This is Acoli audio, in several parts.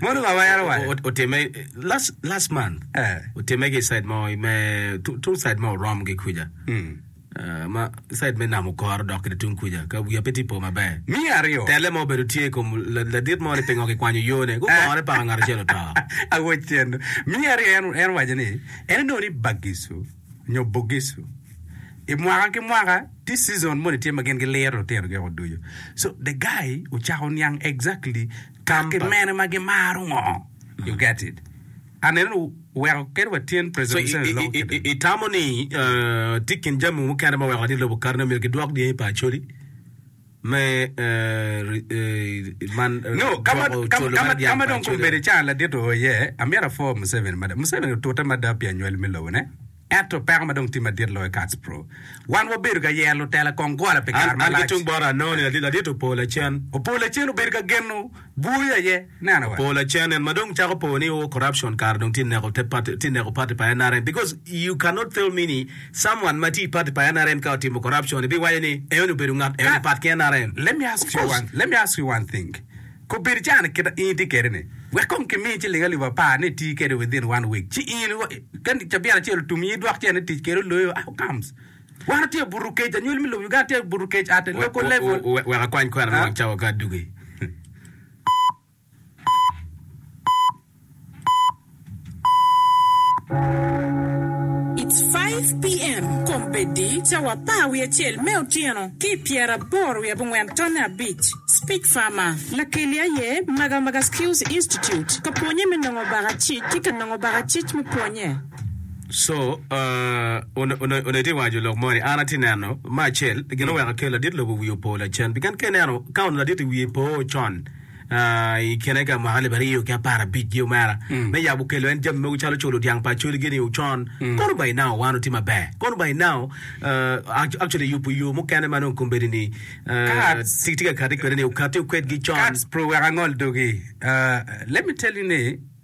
Monica owero wade. Otimme last last month. Eh. Otimme ki side mo me tu- tung side mo orom ki kuja. Mm. Ah, ma side me nam okoro dok ki tung kuja. Ka wiya pe ti po maber. Me aryo. Tele mo obedo tye i kom la- ladit mo ni pingo kikwanyo yone. Gugore paka ngat acel oto. Awoc tyeno. Me aryo en en waco ni en onongo ni bagisu. nyo Bugisu. I mwaka ki mwaka tye season moni tye ma gin gi liro lutino gi oko ducu. So the guy ocako niang exactly kaki mene ma gi maro ngo. You get it? Aneno ni oweko kene wa tyen president Museveni i loko kede. I tamo ni tye kin jami mukene ma weko ni lobo kato ni omyero ki dwok dyangi pa Acholi? me Ka ma dong kombeddi caa ladit oye, amyero apwo Museveni mada. Museveni otute mada pi anywel me lobone. Ento peko ma dong tye madit loyo Kats Pro, wan wabedo ka yero lutela kong gola pi kare malac. An ki tung bota anongo ni ladit opo lacen. Opo lacen obedo ka geno. Bur aye neno wa. Pol acen en ma dong cako po ni o corruption kare dong tye neko te party tye neko party pa nrm because you can not tell me ni someone ma tye i party pa nrm ka otimo corruption ibi waco ni eno ni obedo ngat eno ni pat ki nrm Let me ask you one let me ask you one thing kobedo caa ni kita in itye kede ni wek kong ki miyi ciling alip apar ni iti kede within one week ci in kadi cabit acel otum in idwok cen ni tic kede oloyo how comes Wan watye buto kec, anywali me lobo Uganda tye buto kec at a local level. Wek akwany kwena me wang cawa ka adugi. It's five PM kombeddi cawa apar wiye acel me otyeno ki i pyera aboro wiye abongwen tonne abic. Speech Farmer. Lakeli aye Maga Maga Skills Institute ka pwonye me nongo baka cic ki ka nongo baka cic me pwonye. So, uh, on- on- onongo itye waco lok mo ni, an atye neno me acel, gin oweko kel ladit lobo wiye opo lacen. Pien ka ineno, ka onongo ladit-ti wiye po con, uh, i kine ka mwaka alip aryo ki apar abicgi omera, me yabo kelo en jami mogo calo culo dyang pa acoli-gi-ni ocon, kono by now wan otye maber. Kono by now, uh, act- actually yubo yo mukene ma nongo kombeddi-ni, uh, Kats. ti- tye ka kati kwede-ni, okati okwedgi con. Kats, pur wek angol dogi. Uh, let me tell you ni,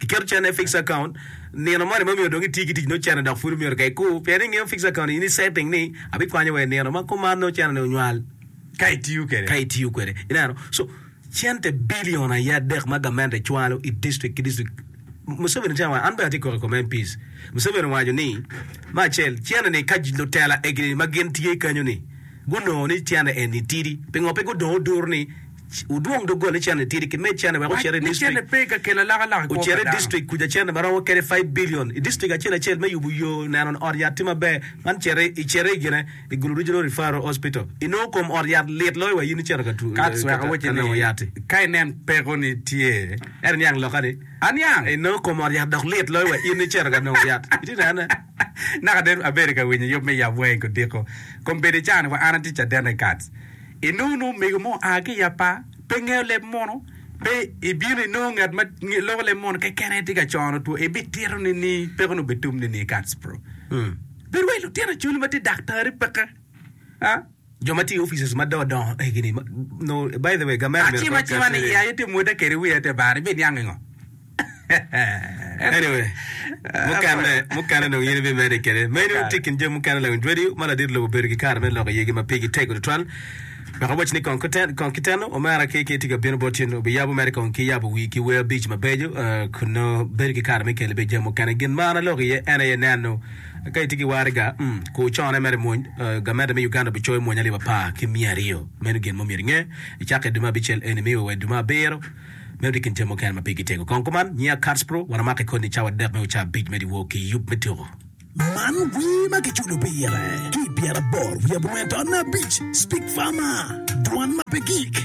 Iketo cene i fixed account, nino moni ma omyero dong iti ki tic ni ocene dok pud omyero ka ikur, pien ingeyo fixed account in isetting ni abikwanyo wa i nino ma kuman nongo ocene ni onywal. Ka itiyo kwede. Ka itiyo kwede. Ineno? So, cente billion aye adek ma gamente cwalo i district ki district, Museveni tye awaco, an bene atye koko i kom MPs, Museveni owaco ni, me acel, cene ni ka lutela egini ma gin tye kenyo ni gunongo ni cene eni tidi, pingo pe gudongo duru ni, Wudwong doggole cene tidi ki med cene wek ocit i distrik ocit i distrik kuca cene ma romo kede five billion i distrik acel acel me yubu yo neno ni ot yat tye maber man citi i citi i gine i gulu regional referral hospital i nongo kom ot yat lit loyo wa in icito Katz wek awaci ni ka inen peko ni tye ento niang loka ni i nongo kom ot yat dok lit loyo wa in icito ka nongo yat itye nene. Naka dong abedo ka winyo yub me yab wanga i Godiko. Kom bedo ica ni wa an atye caden regards. I nongo nongo omego mo oa ki i apa, pe ngeyo leb mono, pe i bino i nongo ngat ma loko leb mono keken aye tye ka cono two i bi tito ni ni peko ni obe tum ni ni regards bro. Bed wa i lutino acholi ma tye daktari peke. Jo ma tiyo i offices ma dongo egi-ni nongo by the way gamente myero Acima cima ni i aye te mwota kede wiya te bar ibiniango ingo? Anyway, mukene mukene dong in ibimedi kede. Meno Okay. tye kin jami mukene lawiny Dwedi ma ladit lobo bedo ki kare me loko iyegi ma pigi tego tutwal. Wek awaci ni kong kuten- kong kiteno omera ki ki tye ka bino bot in obiyabo mere kong ki yabo wii ki wer abic mabeco eh, kun nongo bedo ki kare me kelo bene jami mukene. Gin ma an aloko iye en aye neno Ka itye ki waraga, kur cone mere i mony. Gamente me Uganda bicoyo mony alip apar ki miya aryo. Meno gin ma omyero inge, Icake i dwe me abicel eni miyo wa i dwe me abiro. Meno tye i kin jami mukene ma pigi tego. Kong kuman, nyiya Katspro, wan wamako i koni cawa adek me oca abic me dyewor ki yub me tuko. Man wer ma kiculo pire ki i pyeraboro wiye buento abic, Speak Farmer, Dwan ma pe Gik.